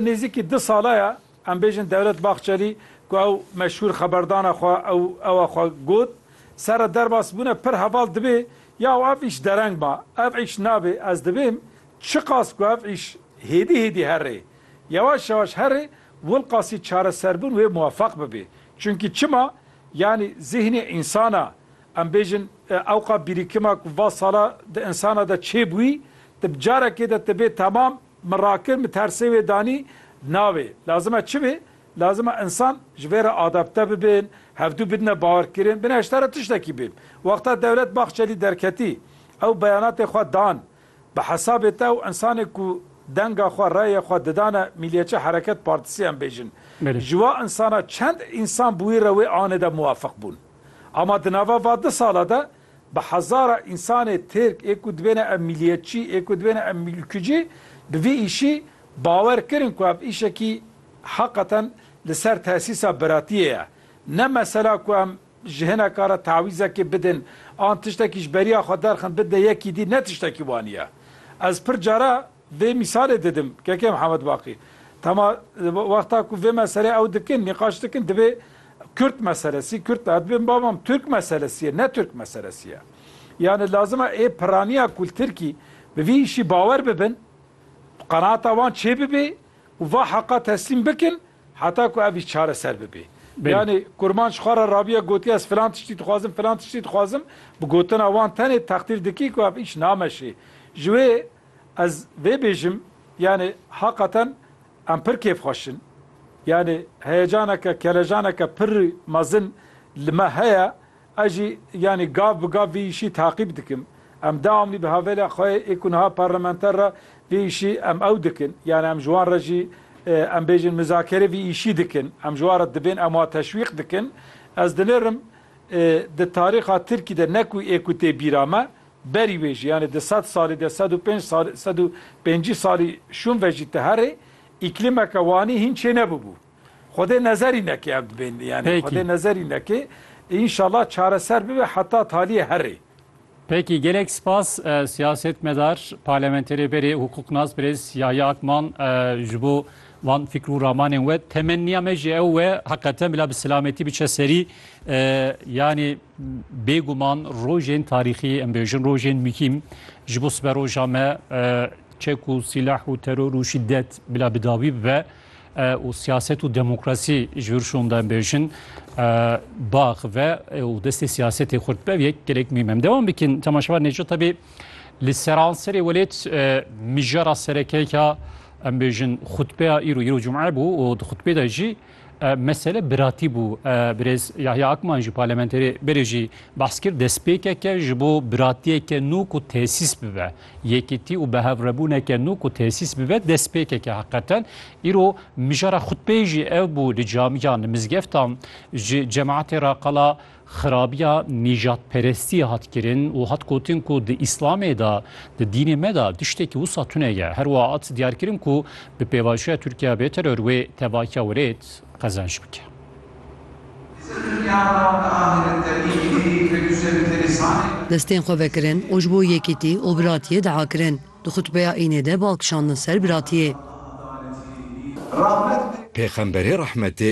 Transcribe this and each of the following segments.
Nêzîkî du sala ye em bêjin Dewlet Bahçelî ku ew meşhûr xeberdana xwe ew ewa xwe got, serre derbasbûne pir heval dibê ya û ev îş dereng ba. Ev îş nabê ez dibêm çiqas ku ev îş hêdî hêdî herê, yewaş yewaş herê wilqasî çareserbûn wê muwefeq bibê. Çimkî çima? Yanî zîhnê însana em bêjin ewqa bîrîkima ku va sala di însana de çêbûyî, tu bi carekê de tu bê temam Min rakir min tersê wê danî navê lazim e çi bê lazim e insan ji vê re adapte bibin hevdû bidine bawerkirin bin heşta re tiştekî bê wexta dewlet Bahçelî derketî ew beyanatê xwe dan bi hesabê te ew insanê ku denga xwe reyê xwe didane Mîliyetçi Hereket Partisî em bêjin ji wa insana çend însan bi wî re wê anê de muwafiq bûn ama di nava va du sala de Bi hezara însanê Tirk ê ku dibêne ev mîliyetçî, ê ku dibêne ev mîlkicî bi vî îşî bawer kirin ku ev îşekî heqeten li ser tesîsa biratiyê ye. Ne mesela ku em ji hineka re tawîzekê bidin an tiştekî ji beriya xwe derxin bidine yekî dî ne tiştekî wanî ye. Ez pir cara Vê mîsalê didim, kekê Mihemed Baqî. Tema wexta ku vê meselê ew dikin, nîqaş dikin dibê Kurd meselesî, Kurd de dibê bamam Tirk meselesî ye, ne Tirk meselesî ye. Yanî lazim e ê piraniya ku li Tirkî bi vî îşî bawer bibin, qenaata wan çê bibê û va heqa teslîm bikin heta ku ev îş çareser bibê. Yanî kurmanc xwe re rabiye gotiye ez filan tiştî dixwazim, filan tiştî dixwazim, bi gotina wan tenê teqdîr dikî ku ev îş nameşê. Ji wê Ez vê bêjim yanê haqaten em pir kêfxweş in. Yanê heyecaneke, kelejaneke pir mezin li me heye. Ez jî yanê gav bi gav vî îşî taqîb dikim. Em dewamlî bi havêla xwe yê ku niha parlamenter re vî îşî em ew dikin. Yanê em ji wan re jî em bêjin mizakerê vî îşî dikin. Em ji wan re dibên em wan teşwîq dikin. Ez dinêrim di tarîxa Tirkî de ne ku ê ku tê bîra me Berî wê jî yanê di sed salî de sed û pênc salî sed û pêncî salî şûn ve jî ti herê îklîmeke wanî hîn çê nebûbû. Xwedê nezerî neke ev dibên yanê Pêkî. xwedê nezerî neke înşallah çareser bibe heta talîyê herê. Pêkî gelek spas siyasetmedar, parlementerê berê hûqûqnas birêz Yahya Akman ji bo Van fikr û ramanên we temenniya me jî ew e heqeten bila bi silametî biçe serî. Yanî bêguman rojên tarîxî em bêjin rojên mihîm ji bo sibe roja me çek û sîlah û teror û şiddet bila bidawî bibe û siyaset û demokrasî ji vir şonda em bêjin bax ve û destê siyasetê xurt be yek gelek mîm em devam bikin temaşevar neco tebî li seranserê welêt mijara serekeyka Em bêjin xutbeya îro îro cum'e bû û di xutbê de jî mesele biratî bû. Birêz Yahya Akman jî parlamenterê berê jî behs kir destpêkeke ji bo biratiyeke nû ku tesîs bibe, yekîtî û bihevrêbûneke nû ku tesîs bibe destpêkeke heqeten. Îro mijara xutbeyê jî ev bû li camiyan, li mizgeftan ji cemaetê re qala Xirabiya nîjadperestiyê hat kirin û hat gotin ku di Îslamê de, di dînê me de tiştekî wisa tune ye. Her wiha hat diyarkirin ku bi pêvajoya Tirkiye bê teror wê tevahiya wêrêd qezenc bike. Destên xwe vekirin û ji bo yekîtî û biratiyê dua kirin. Di xutbeya Înê de bal kişandin ser biratiyê. Pêxemberê rehmetê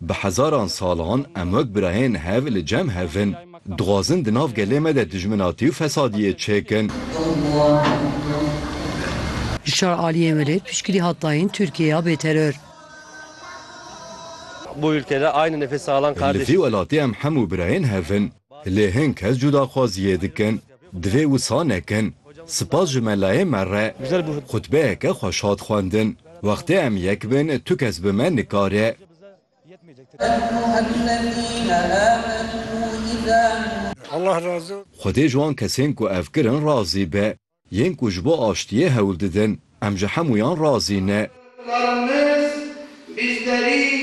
Bi hezaran salan em wek birayên hev li cem hev in. Dixwazin di nav gelê me de dijminatî û fesadiyê çêkin. Ji şar aliyên welêt piştgirî hat dayîn Tirkiyeya bêteror. Li vî welatê em hemû birayên hev in. Lê hin kes cudaxwaziyê dikin. Divê wisa nekin. Spas ji me layê me re. Xutbeyeke xweş hat xwendin. Wextê em yek bin tu kes bi me nikare. Xwedê ji wan kesên ku ev kirin razî be. Yên ku ji bo aştiyê hewl didin. Em ji hemûyan razî ne.